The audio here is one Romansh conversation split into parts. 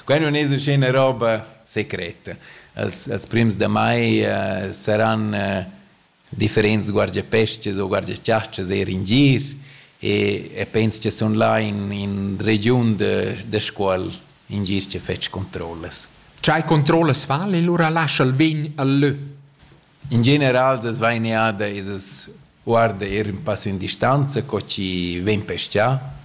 Quai nun es üschina roba secreta. Els els prims da mai eh, saran eh, differents guardapeschas o guardachastras eir in gir e e pens cha sun là in in regiun da da Scuol in gir chi fetsch controllas. Tgei controllas val e lura lascha'l vegn al lö? In general as va in eada e as guarda eir ün passo in distanza co chi vegn pestà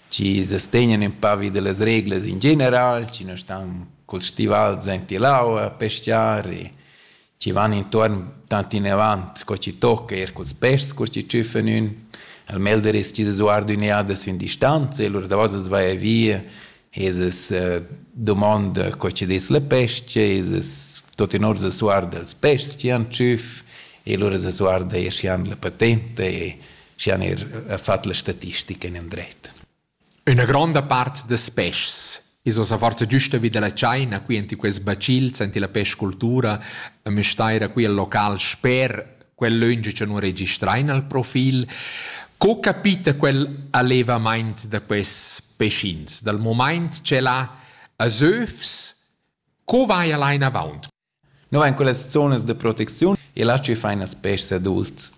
chi sustegnan ün pa vi da las reglas in general, chi nu stan culs stivals aint l'aua a peschiar e chi van intuorn tant inavant co chi tocca, eir culs peschs cur chi tschüffan ün. Al melder es chi s'as guarda ün e ata sün distanza e lur davos as vaja via e s'as dumonda co chi dess la pes-cha e s'as tuot in or s'as guarda als peschs chi han tschüff e lura s'as guarda eir schi han la patenta e și han er fatg la statistica in endret. Üna gronda part das peschs is ossa forza giusta vi della China, qui enti quest bacils, enti la pescultura, müstaira qui al local sper quel lönge che non registrain al profil. Co capita quel allevamaint da quest pecins? Dal moment ce la a Zeufs, co vai allein avant? No vain quellas zonas da protecziun e là chi faina ils peschs adults.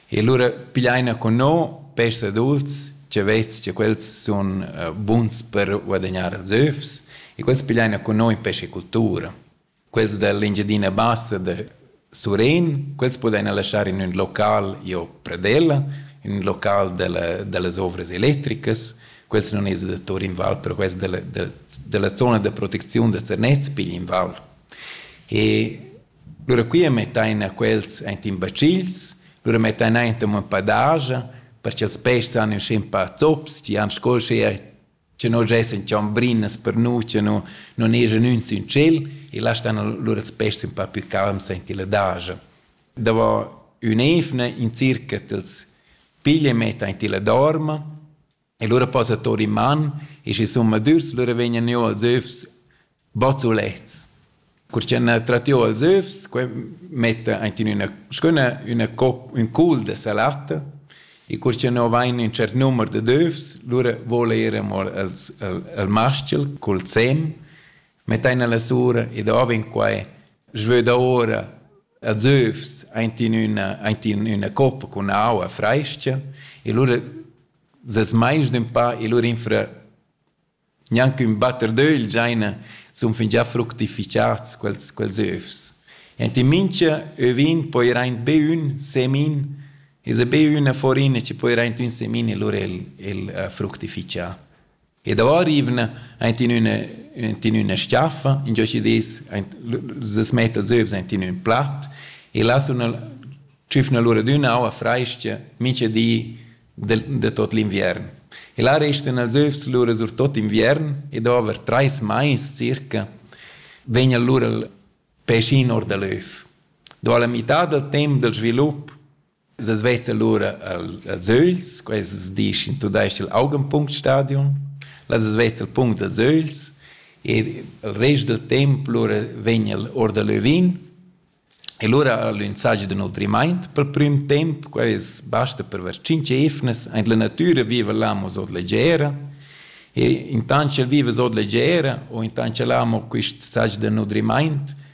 E lura pigliaina cun no peschs adults cha vez cha quels sun buns per guadagnar ils övs e quels pigliaina cun no in pescicultura. Quels da l'Engiadina Bassa da Surén, quels pudaina laschar in ün local jo pradella, in ün local da la da las ovras electricas. Quels nun es da tour in val, però quels da la da la zona da protecziun da Zernez pigli in val. E lura quia mettain a quels aint in bacils, lura mettain aint amo ün pa daja per cha'ls peschs han ün schin pa zops, chi han sco uschea cha no giessan chambrinas per nu, cha no non eschan ün sün tschel e là stan lura ils peschs ün pa plü calms aint illa daja. Davo ün'eivna in circa t'ls piglia e metta aint illa dorma E lura posa tur in man e sche summadürs lura vegnan jü als öfs bazzulets. Cur cha n'ha trat jü als öfs, que metta aint in üna s-chüna üna cop, ün cul da salatta e cur cha no vain ün tschert numer dad öfs, lura voul eir amo als, al, al maschel cul sem, mettain la sura e davo in quai svöda ora als öfs aint in üna, aint in üna coppa cun aua frais-cha e lura Ses meins d'empau e lur infra gnanc ün batter d'ögl giaina sun fingià fructifichats quels quels övs. Enti mincha övin poira aint be ün semin esa be üna forin chi poira aint ün semin e lura el el fructifichà. E davo arrivna aint in üna in üna schiaffa, ingio chi dess aint s's metta zövs aint in ün plat e là suna tschüfna lura d'üna aua frais-cha mincha di del de tot l'inviern. E là restan els övs lura sur tot inviern e dovre trais mais circa vegna lura il peschin or da l'öv. Do alla mità dal temp del svilup Es veta lura als ögls, quests dis in tudais-ch il Augenpunktstadion. Las es veta il punct als ögls e il rest del temp lura vegn el or da l'övin. E lura l'insagi da nutrimaint pel prüm temp, quais basta per ver tschinch eivnas. Aint la natüra viva l'amo sot leggera e intant ch'el viva sot leggera o intant ch'el amo quist sagi da nutrimaint,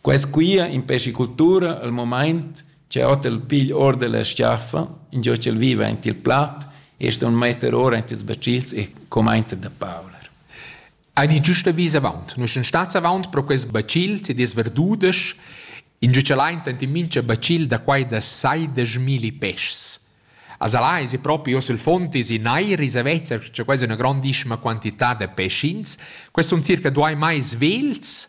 Quei squia impeschi cultura el mumaint che hotel pigl ord dalla schiaffa, ingio ch'el viva aint il plat e ston metter ora aint ils becils e cumainza da pauler. Heidi giusta vis avaunt. Nus sun stats avaunt pro quels becils ed es verdudesch, ingio ch'el aint ant in mincha becil da quai da saideschmilli peschs. Als alà esi propi hoz il fond esi neir esa vezza cha quai es üna grandissima quantità da peschins. Quels sun circa duai mais vels,